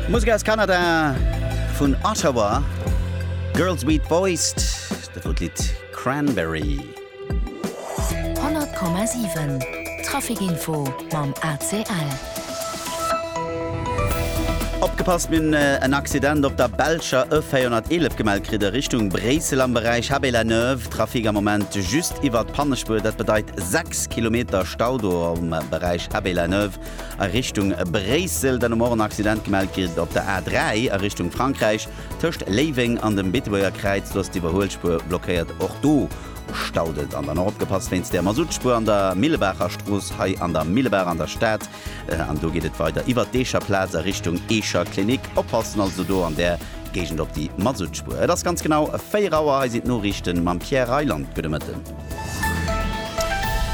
Musek aus Kanada vun Ottawa, Girls Beat Boys, dat wor d'Lidd Cranberry. 100,7 Traficinfo mam ACL. Opgepasst, mir hunn en Accident op der belscher E 411 gemellt kritt a Richtung Bréissel am Beräich Habé-la-Neuve. Trafic am Moment just iwwert d'Pannespuer, dat bedeit 6 Kilometer Stau do am Beräich Habé-la-Neuve. a Richtung Bréissel. Dann um Morgen Accident gemellt ginn op der A3 a Richtung Frankräich. Tëscht Léiweng an dem Beetebuerger Kräiz, do ass d'Iwwerhuelspuer blockéiert. Och do staut et. An dann och opgepasst wéinst der Masuttspuer an der Millebaacher Strooss hei an der Millebaach an der Stad. An do geet et weider iwwert d'Eecher Plaz a Richtung Eecher Klinik. Oppassen also do an där Géigend op déi Masuttspuer. Et ass ganz genau 4 Auer. Hei sinn d'Noriichte mam Pierre Reyland. Gudde Mëtten.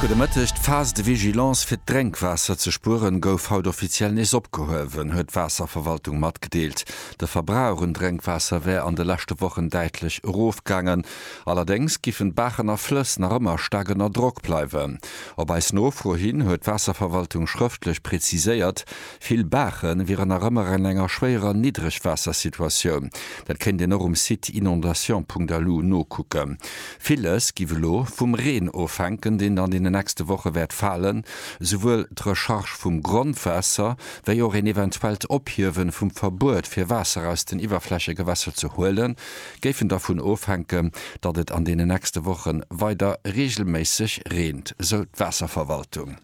Gudde Mëtteg, D'Phase de vigilance fir d'Drénkwaasser ze spueren, gouf haut offiziell nees opgehuewen, huet d'Waasserverwaltung matgedeelt. De Verbrauch un Drénkwaasser wär an de leschte Wochen däitlech erofgaangen. Allerdéngs giffen d'Baachen a Flëss nach ëmmer staark ënner Drock bleiwen. Op eis Nofro hin huet d'Waasserverwaltung schrëftlech preziséiert, Vill Baache wieren nach ëmmer an enger schwéierer Niddregwaassersituatioun. Dat kéint een och um Site inondations.lu nokucken. Villes giff elo vum Reen ofhänken, deen an deenen nächste Woche wäert falen. Souwuel d'Recharge vum Grondwaasser, wéi och een eventuellt Ophiewe vum Verbuet fir Waasser aus den Iwwerflächegewässer ze huelen, géifen dervun ofhänken, datt et an deenen nächste Woche weider reegelméisseg reent, sou d'Waasserverwaltung.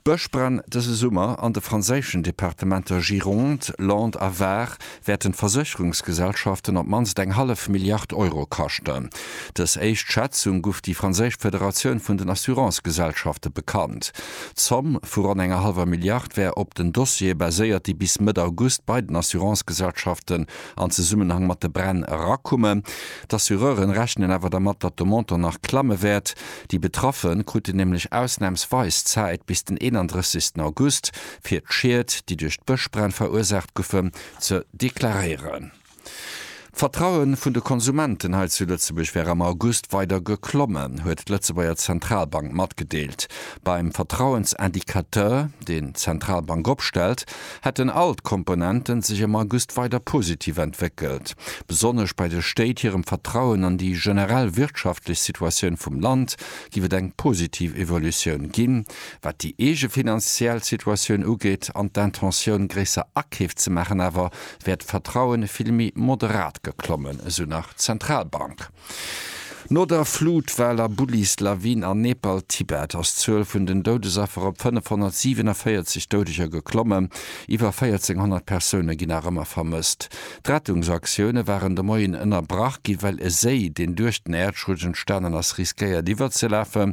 D'Bëschbränn dëse Summer an de franséischen Departementer Gironde, Landes a Var wäerten d'Versécherungsgesellschaften op d'mannst eng hallef Milliard Euro kaschten. Dës éischt Schätzung guff déi franséisch Federatioun vun den Assurancegesellschafte bekannt. D'Zomm vu ronn enger hallwer Milliard wär op den Dossiere baséiert, déi bis Mëtt August bei den Assurancegesellschaften an Zesummenhang mat de Bränn erakumen. D'Assureuren rechnen awer dermat, datt de Montant nach klamme wäert. Déi Betraffe kruten nämlech ausnamsweis Zäit bis den 31 August, fir d'Schied, déi duerch d'Bëschbränn verursaacht goufen, ze deklaréieren. D'Vertraue vun de Konsumenten hei zu Lëtzebuerg wär am August weider geklommen, huet d'Lëtzebuerger Zentralbank matgedeelt. Beim Vertrauensindicateur, deen d'Zentralbank opstellt, hätten all d'Komponenten sech am August weider positiv entwéckelt, besonnesch bei de Stéit hirem Vertrauen an déi generell wirtschaftlech Situatioun vum Land giff et eng positiv Evolutioun ginn, wat déi eege finanziell Situatioun ugeet an d'Intentioun gréisser Akeef ze maachen awer, wär d'Vertrauen vill méi moderat geklommen, esou nach d'Zentralbank. No der Flut, Val a Bullis, Lawin an Nepal, Tibet ass d'Zuel vun den Doudesaffer op 547 Doudeger geklommen. Iwwer 1400 Persoune ginn nach ëmmer vermësst. D'Rettungsaktioune waren de Moien ënnerbrach ginn, well e Séi, deen duerch den Äerdschutt entstanen ass, riskéiert iwwerzelafen.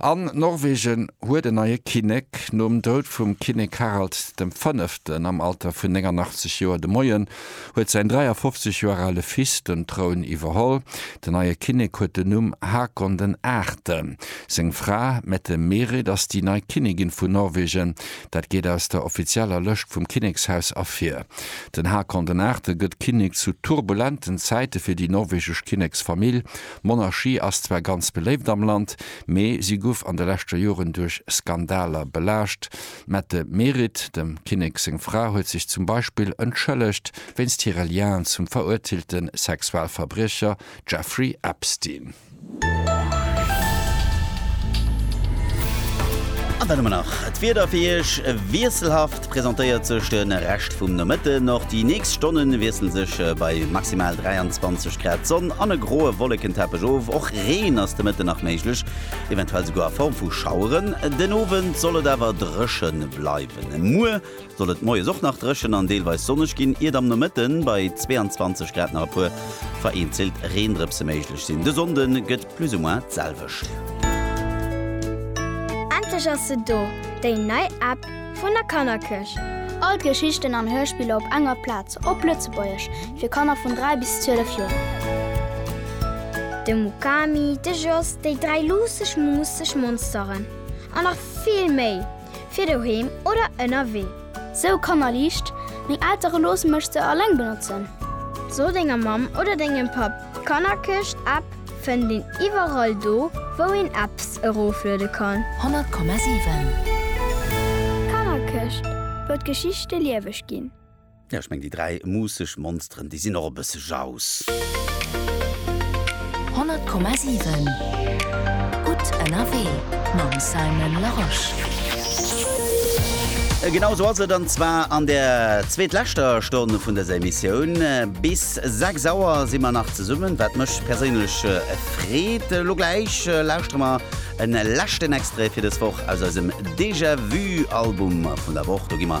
An Norwegen huet en neie Kinnek. Nom Doud vum Kinnek Harald dem Fënneften am Alter vun 89 Joer de Moien huet säin 53 Joer ale Fils den Troun iwwerholl. Den neie Kinnek huet den Numm Hakon den Aachten. Seng Fra Mette-Merit ass déi nei Kinnigin vun Norwegen. Dat geet aus der offizieller Lëscht vum Kinnekshaus ervir. Den Hakon den Aachte gëtt Kinnek zu turbulenten Zäite fir déi norwegesch Kinneksfamill. D'Monarchie ass zwar ganz beléift am Land, mee si guff an de leschter Joren duerch Skandaler belaascht. D'Mette Merit, dem Kinnek seng Fra, huet sech zum Beispill entschëllegt wéinst hire Lien zum verurteelte Sexualverbriecher Jeffrey Epstein. An dann hu mer nach d'Wieder fir Iech, wiesselhaft. Presentéiert sech de Rescht vum Nomëtten, och déi nächst Stonne wiessle sech bei maximal 23 Grad d'Sonn an e groe Wollekenteppech of. Och Reen ass de Mëtten nach méiglech, eventuell souguer a Form vu Schaueren. Den Owend soll et awer dréche bleiwen. Muer soll et moies och nach dréchen an deelweis sonneg ginn, iert am Nomëtte bei 22 Grad nach e puer vereenzelt Reendrëpse méiglech sinn. De Sonnde gëtt. Plus ou moins d'selwecht. Endlech ass se do, déi nei App vun der Kannerkëscht! All d'Geschichten an Hörspiller op enger Plaz, op Lëtzebuergesch, fir Kanner vun 3 bis 12 Joer. De Mukami, de Jos, déi dräi luusseg, muusseg Monsteren an nach vill méi! fir doheem oder ënnerwee. Sou Kannerliicht, Meng Eltere loosse mech se alleng benotzen. So denger Mamm oder dengem Papp, d'Kannerkëscht App fënnt een iwwerall do wou een Apps erofluede kann. 100,7. D'Kannerkëscht, wou d'Geschichte lieweg ginn. Jo, ech meng déi 3 muusseg Monsteren, déi sinn och e bësse jauss. 100,7 Gutt ënnerwee mam Simon Larosche. Genau esou ass et, an zwar an der zweetleschter Stonn vun dëser Emissioun. Bis 6 Auer si mer nach zesummen, wat mech perséinlech freet. Elo gläich lauschtere mer e leschten Extrait fir dës Woch aus eisem Déjà-Vu-Album vun der Woch. Do gi mer